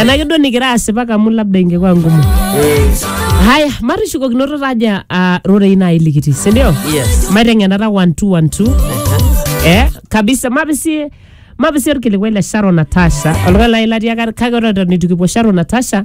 enake duo nikira asipak amu labda ingekuwa ngumu haya matishukokinoto taja uh, rorei nai likiti sindio Yes. maiteng'enata 1212 eh kabisa mabisi mabisi orkilikuai le sharon natasha oltung'ani lai latii aka- kake ore eton itu kipuo sharon natasha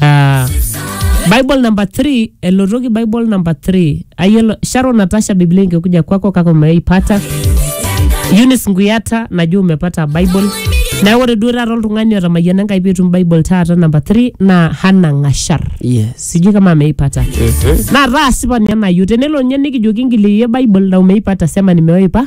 Ah, bible number 3 elotoki bible number 3 ayelo sharon natasha biblia ingekuja kwako kaka umeipata Eunice Nguyata najua umepata Bible. Na ore duo taata oltung'ani otamayiana Enkai peetum Bible taata namba 3 naa Hannah Ngashar. Yes. Sijui kama ameipata. Naa taa asipani ena yu tenelo ninye nikijoki ngiliye Bible na umeipata sema nimeoipa.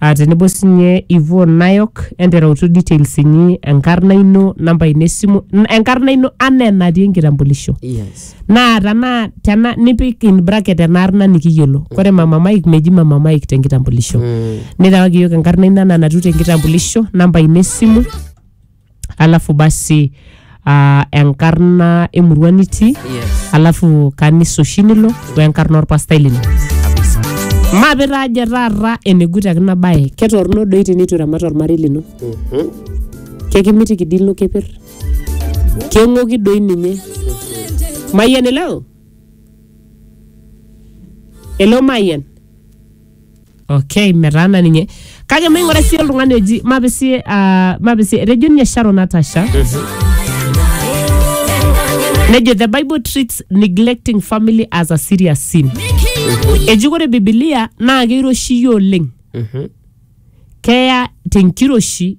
Ah, tenebo sinye Yvonne Nayok enterautu details inyi enkarna ino namba ino esimu n- enkarna ino anaa enatii enkitambulisho yes naa tana tena nipik in bracket enaarna nikiyiolo ore mama Mike meji mama Mike tenkitambulisho mm. nirewaki yiok enkarna ino anaa natiu tenkitambulisho namba ino esimu alafu basi uh, enkarna emurua nitii Yes. alafu kanisa oshi nilo wenkarna orpastai lino maape taaje taata enegut akina baye ketorno doi tenitu iramat ormarei lino kekimitiki dii ilo keper keng'oki doi ninye mayian eleo eleo mayian okay metaana ninye kake maing'ura sii oltung'ani oji mapisie ah, mapisie etejo ninye sharon natasha nejo the bible treats neglecting family as a serious sin eji ore bibilia naa keiroshi iyie oleng keya tenkiroshi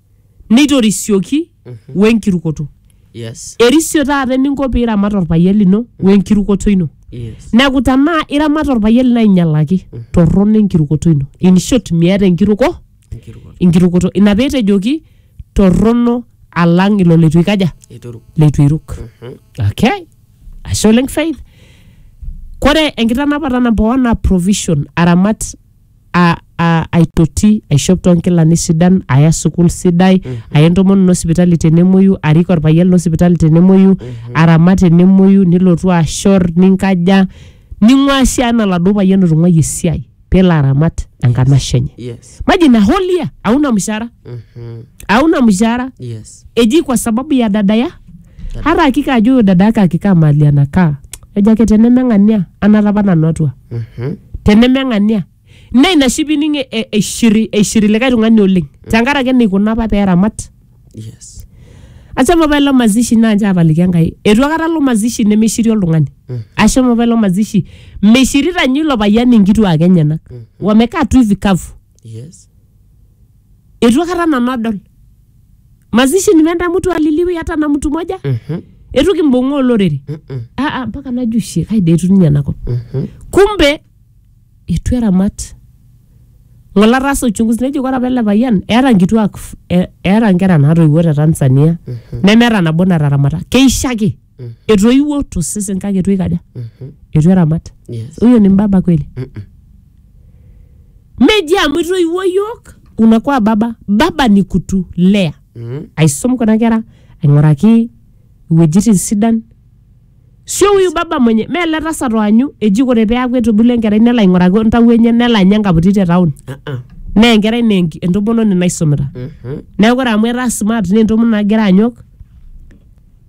neitorisioki wenkirukoto. Yes. Erisio taata eninko piramat orpayian lino wenkirukoto ino. Yes. Neeku tenaa iramat orpayian lino ainyalaki, torrono enkirukoto ino. In short, miata enkiruko, Enkirukoto. enkirukoto. Ina petejoki torrono alang ilo leitu ikaja, Eituruk. leitu iruk. Okay. Ashe oleng Faith. Kore enkitanapata namba one naa provision, aramat a, a, aitoti aishop toonkilani sidan aya sukul sidai aya entomononi ino sipitali tenemuoyu arik orpayian lino sipitali tenemuoyu aramat tenemuoyu nilotu ashor ninkaja ning'ua sii anaa oladuo payian otung'uayie esiai pelo aramat enkanashe enye yes maji ina holia auna mshahara Mhm. auna mshahara yes eji kwa sababu ya dada ya hata hakika ajo huyo dada yake akikaa mahali anakaa ejo ake tenemeng'ania anata apa nanu atua Mhm. tenemeng'ania na ina shi pining e- e- eishiri eishiri likae tung'ani oleng tenkaraki eneikuna apa peeramat Yes. ashomo apa ilo mazishi naa nche apaliki enkai etu akata lo mazishi nemeishiri oltung'ani ashomo apa ilo mazishi meishirita nyi ilo payian inkituak enyenak wamekaa tu hivi kavu Yes. Eitu akata nanu adol. Mazishi nimeenda mtu aliliwi hata na mtu moja. Mhm. Eitu kimbung'aa olorere. Mhm. Ah, ah, mpaka najo shie kai dee etu ninye enakop. Mhm. Kumbe eitu eramat. Ng'ole ataasa uchunguzi nejo ore apa ele payian eeta nkituak f- e- eeta nkera naatoiwuo te Tanzania nemeeta nabo nataramata. Keisho ake. Mhm. etoiwuo tosesen kake etu ikaja Mhm. etu eramat Yes. huyo ni mbaba kweli Mm-mm. meji amu itoiwuo yiok unakuwa baba baba ni kutulea Mm. aisom kuna kera aing'uraki iwuejitin sidan sio huyu baba mwenye mee ele tasat oanyu eji kore peaku etubulu enkerai nelo aing'uraki ontawuo enye nelo anya enkaputi te taon Uh-uh. naa enkerai naa enki- entomononi naisumita Mhm. neeku ore amu etaa smart naa entomononi nagira anyok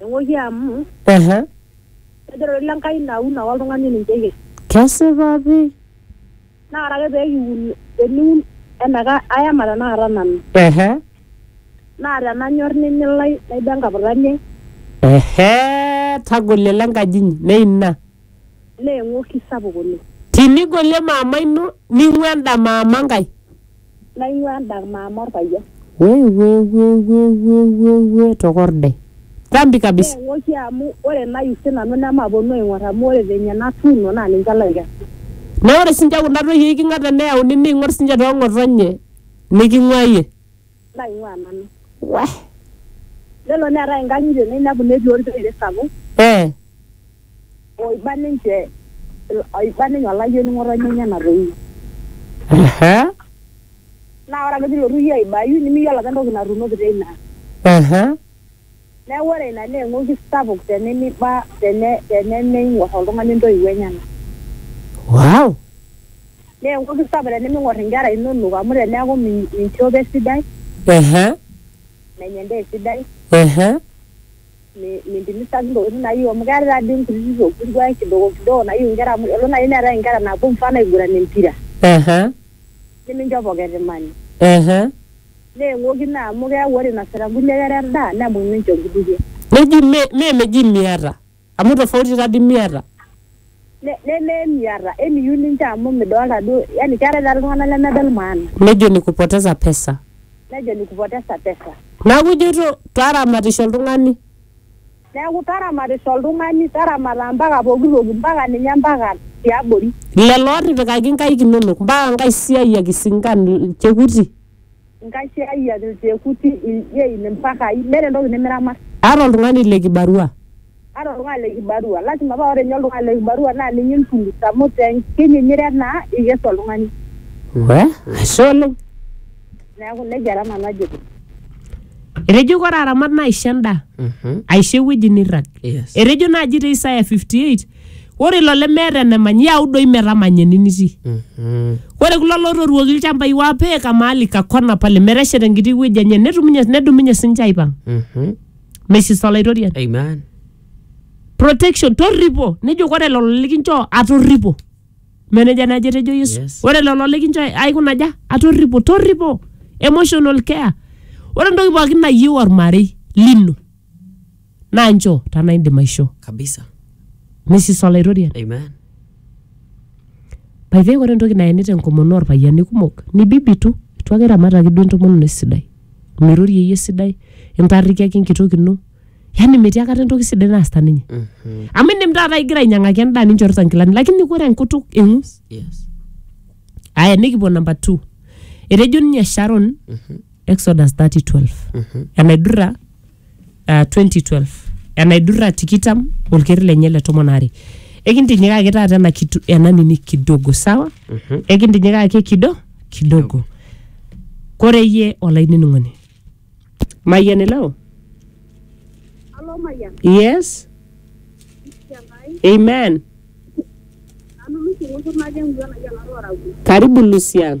Eng'oki amu Ehe. kejo doi le Nkai naun ake oltung'ani ninche eyieu. Kesipa pi. Naa ore ake pee kiun teniun eneka ayama tenakata nanu. Ehe. Naa tenanyor nimilai naiba enkaputani ai. Ehe. Tagolie ile nkaji inyi. Naa ina. Naa eng'oki sapuk oleng. Tinigolie mama ino ning'ua enda mama nkae. naing'uaa endak maama olpayian. Wewewewewewe tokorde. Dhambi kabisa. Neeng'oki amu ore nayu si nanu nemapuonu aing'or amu ore venye natuuno naa ninche laikesu. Naa ore sinche kunda toyie eikinga teneyauni neing'or sinche too ng'otonye niking'uaa iyie. Naing'uaa nanu. Weh. Nelo neetae inkang'itie nainepu netii olteere sapuk. Ee. oiba ninche oiba ninye olayioni ng'otonye enye natoiu Ehe, naa ore ake pilotu iyie aibayu nimiyiolo apa entoki natuunoki teina ehe, neeku ore ina naa eng'oki sapuk tenimiba tene tenemeing'or oltung'ani intoiwuo enyenak wow, naa eng'oki sapuk teniming'or inkera inonok amu teneeku min- minchopo esidai ehe, menya endaa esidai ehe, mi- mintimisaki ntokitin nayieu amu keetae taa dii nkutiti tokitin duake kidogo kidogo nayieu nkera amu elo naaji neetae inkera naapuo mfano aiguran empira Ehe. nimincho pocket money Ehe. neeng'oki naa amu keeku ore inosita nkulie kera endaa nemuny ninche nkutukie Neji me me meji miata. Amu tofauti tadi miata. Neme emiata, emiyieu ninche amu midolta duo, yani keetae taata iltung'anak lemedol maana. Nejo nikupoteza pesa. Nejo nikupoteza pesa. Neeku ijoito taramatisho oltung'ani. Neeku taramatisho oltung'ani, taramata mpaka pooki toki, mpaka ninye mpaka tiabori. Lelo ootipikaki nkaik inonok, mpaka nkaisiayiak, isinkan, ilchekuti. Nkasiayiak, ilchekuti, iljein, ilmpakai, meeta entoki nimiramat. Aata oltung'ani le kibarua. Aata oltung'ani le kibarua. Lasima paa ore ninye oltung'ani le kibarua naa ninye intulut amu te nkinyinyire naa eikesu oltung'ani. Wee, ashe oleng. Neaku nejia taa nanu ajito. Etejo kore aramat naa aisho endaa, aisho ewueji neirrag. Etejo naaji te Isaya 58. ore ilo lemeeta enamany yau doi metamanya ene nitii Mhm. ore kulo lotoruoki ilchambai wapeeka maali kakona pale meteshet enkiti wueji enye netumunye nedumunye sinche aipang Mhm. mesis olaitoriani Amen. protection torripo nejo ore lelo likinchoo atorripo meneja naji etejo yesu Yes. ore lelo likinchoo aikunaja atorripo torripo emotional care ore entoki pookin nayieu ormarei lino naa nchoo tanaa indim aishoo kabisa misis olaitoriani amen by the way ore entoki naeni tenkomono orpayiani kumok ni bibitu itu ake iramataki duo entomononi esidai mirorie iyie esidai intarrikiaki enkitok ino yani metii akata entoki sidai naasita ninye Mhm. amu indim taata igira ainyang'aki endaa ninchorita nkilani lakini ore enkutuk eng'us yes aya nikipuo number two etejo ninye sharon Mhm. exodus 3012 Mhm. enaidurra ah, 2012 enaidurra tikitam olkeri lenye le tomon are ekintinyikaki taata ena kitu ena nini kidogo sawa ekintinyikaki kido kidogo kore iyie olainining'oni mayian ileo Alo Mayian, yes Siangai, amen nanu Lucy Ng'utur natii engwuan ai enaro Arabu. karibu lusian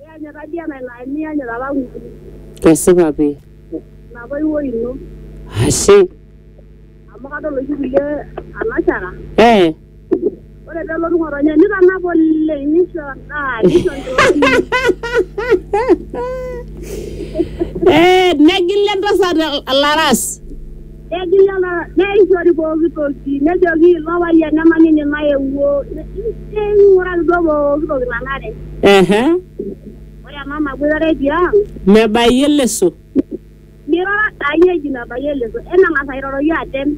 Iyanyit taadi ena ilo aini iyanyit apa ng'ole. Kesipa pii. Ina toiwuoi ino. Ashe. Amu kadol oshi kulie anashara. Ee. Ore pee elotu ng'otonye nitanap oleng nisho endaa nisho nkilani. Ee negila entasat ilaras. Negil lelo neishori pooki toki, nejoki ilo payian ema ninye nayewuo, neing'uraki duo pooki toki nanare. Ehe. Ore emama boitare tiang. Mebayie leso. Miroro aai eji mebayie leso, emeng'as airoroki atem.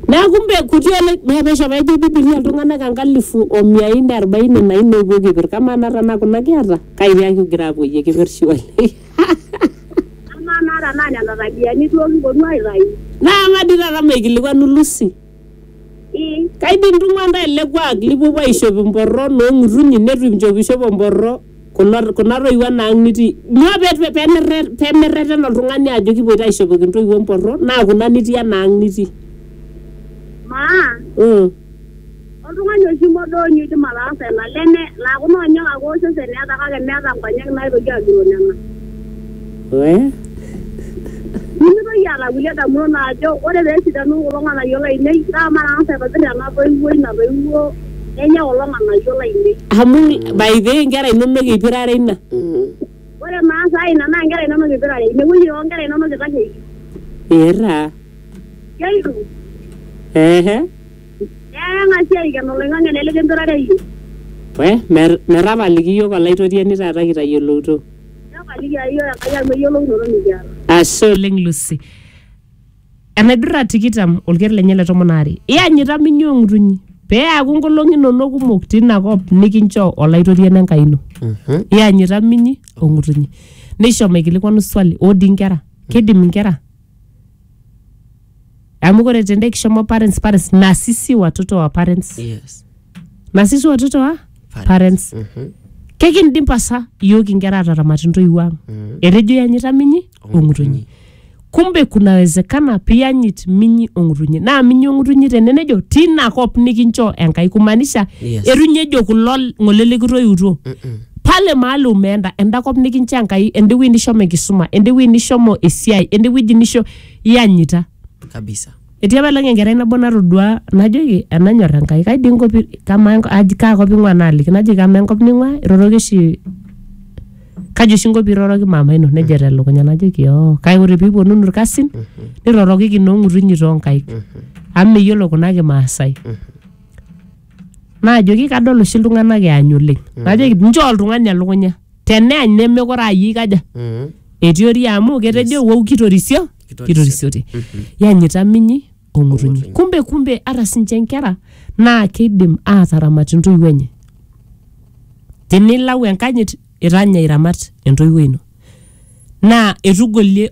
Neaku mbe kuti oleng, naa pesho pejo Biblia iltung'ana enkalifu o mia nne arubaini na nne oopuo kipir. Kamaa naa tenaa kuna kiata, kai pee kigira aapuoyie kipir shuali. Amaa naa tenaa nena tabiani duo kiponu aitayu. Naa ama dii taata maikilikwanu Lucy. Ii. Kai dii intung'ua ntae ele kuak lipuopuo aishop imporro noo ng'utunyi netu inchopishopo mporro kulo kuna toiwuo ena ang' nitii. Nyoo pee pemirre pemirreten oltung'ani ajo kipuoito aishopoki intoiwuo mporro naa kuna nitii ena ang' nitii. Maa. Mm. Oltung'ani oshi modoonyo oidim ataasa ena, leme laa kuna onyek ake osesen eeta kake meeta nkonyek naaitoki agiroo nena. Wee. Nimitoki aata kulie damunot naajo ore pee esidanu kulo ng'anayio lainei naa matang'asa aitobir ena toiwuoi natoiwuo nenya kulo ng'anayio lainei. Amu by the way nkera inonok ipirare ina. Ore maasa ai ina naa nkera inonok ipirare, ine wueji too nkera inonok itasheiki. Eeh taa. Keitu, ehe eeng'asi aiken oloing'ang'e lele kemperare iyie. we mer- metapaliki iyiook olaitoriani taata kitayiolouto Nepaliki aa iyiook Enkai amu eyiolounoto nikiata. ashe oleng Lucy enaidurra tikitam olker lenye le tomon aare iyanyita minyi ong'utunyi pee eaku nkolong'i inonok kumok tina kop nikinchoo olaitoriani Enkai ino Mhm. iyanyita minyi ong'utunyi nishomo aikilikuanu swali odi inkera kidim inkera amu kore tende kishomo parents parents na sisi watoto wa parents yes na sisi watoto wa parents Mhm. kekindim pasa iyook inkera ataramat intoiwuo ang Mm. etejo yanyita minyi ong'utunyi kumbe kunawezekana piyanyit minyi ong'utunyi naa minyi ong'utunyi tene nejo tina kop nikinchoo enkai kumaanisha Yes. etu ninye ejo kulo ng'ole likitoiutuo Mm-mm. pale mahali umeenda enda kop nikincha enkai ende wueji nishomo enkisuma ende wueji nishomo esiai ende wueji nisho iyanyita kabisa etii apa elong enkerai nabo natodua najoki enanyor enkai kai dii enkop i- kamaa enko- aji- kaa kop ing'ua naaliki najoki amaa enkop ning'ua iroroki oshi kaji oshi inko piiroroki mama ino nejo telukunya najoki oo kake ore piiponunu irkasin nirorokiki noong'utunyi toonkaik amu meyiolo kuna kimaasai naajoki kadol oshi iltung'anak eany oleng najoki nchoo oltung'ani elukunya teneany nemekure ayie kaja Mm. etiori amu ketejo wou kitorisio kitorisiote yanyita minyi ong'utunyi kumbe kumbe ata sinche nkera naa keidim aataramat intoiwuo enye tinilau enkanyit itanya iramat entoiwuo ino naa etugolie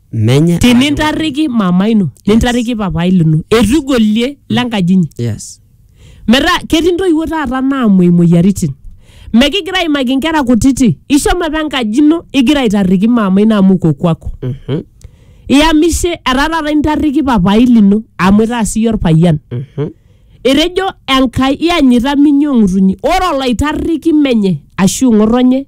Menya. tinintarriki mama ino nintarriki papai lino eitu igolie lenkaji inyi Yes. metaa ketii intoiwuo taata naamuoi imoyiaritin mekigira aimaki inkera kutiti ishomo apa enkaji ino igira aitarriki mama ino amu uko kwako Mhm. iyamishe etaa taata intarriki papai lino amu itaa siyie orpayian Mhm. etejo enkai iyanyita minyi ong'utunyi ore olaitarriki menye ashu ng'otonye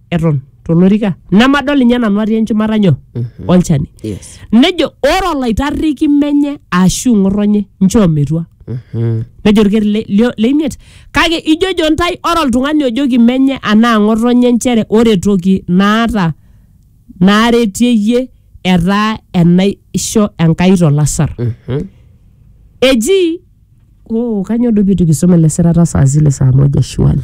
eton tolorika nemadol ninye nanu atii enchumata nyoo olchani yes nejo ore olaitarriki menye ashu ng'otonye nchoo metua Mhm. nejo orkeri le- lio- leimiet kake ijojo ntae ore oltung'ani ojoki menye anaa ng'otonye nchere ore toki naata naaretieyie etaa enaisho enkai tolasar Mhm. eji Oh, kanyoo duo pitu kisoma ele sirata saa zile saa moja shwali.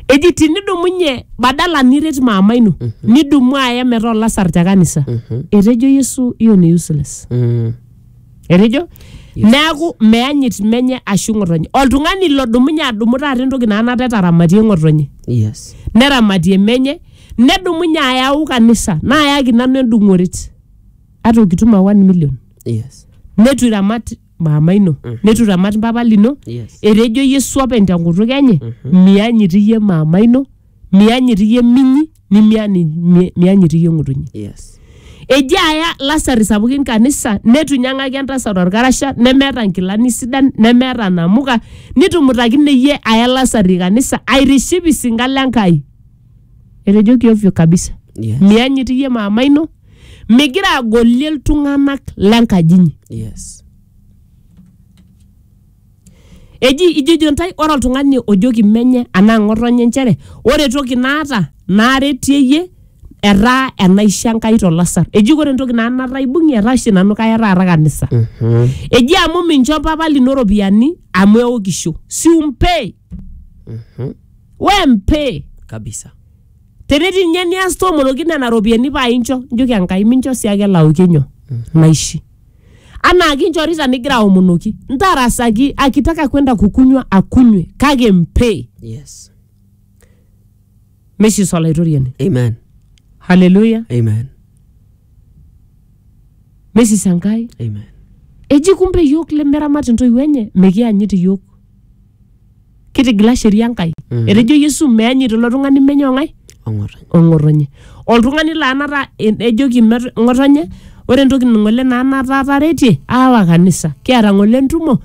Eji tinidumunye badala niret maama ino, nidumu aya metaa olasar te kanisa. Etejo Yesu hiyo ni useless. Mm. Etejo neaku meanyit menye ashu ng'otonye. Oltung'ani lodumunye adumu taata entoki naa nataa etaramatie ng'otonye. Yes. neramatie menye nedumunye ayau kanisa naayaki nanu endung'oret ata okitum a 1 million Yes. netu iramat maama ino Mhm. neitu iramat mpapa lino Yes. etejo yesu openy tenkutuk enye Mhm. mianyit iyie maama ino mianyit iyie minyi nimiani- mi- mianyit iyie ng'utunyi Yes. eji aya lasari sapukin kanisa netu inyang'aki entasat orkarasha nemeeta nkilani sidan nemeeta namuka nitumutakine iyie aya lasari kanisa airiship isinka le nkai etejoki ovyo kabisa Yes. mianyit iyie maama ino migira agolie iltung'anak lenkaji inyi yes eji ijojo ntae ore oltung'ani ojoki menye anaa ng'otonye nchere ore toki naata naaretie iyie etaa enaisho enkai tolasar eji ore entoki naa nataa aibung'ie etaa oshi nanu kaya taata kanisa Mhm. eji amu mincho papa lino ropiyiani amu eokisho si umpee Mhm. we mpee kabisa tenetii ninye nias tomoloki nena ropiyiani paa incho njoki enkai mincho sii ake elaoki nyoo naishi anaa kinchorita nigira aomonoki ntarasaki akitaka kwenda kukunywa akunywe kake mpe Yes. meshi solaitoriani Amen. haleluya Amen. mesis enkai Amen. eji kumbe iyiok lemeramat intoiwuo enye mikianyit iyiok Kitigila sheria Enkai. Mhm. Etejo Yesu meanyit ilo tung'ani menye ong'ae Ong'otonye. ong'otonye. Oltung'ani laa nataa en- ejoki met- ng'otonye ore entoki ng'ole naa nataa ataretie aawa kanisa. Kiata ng'ole entumo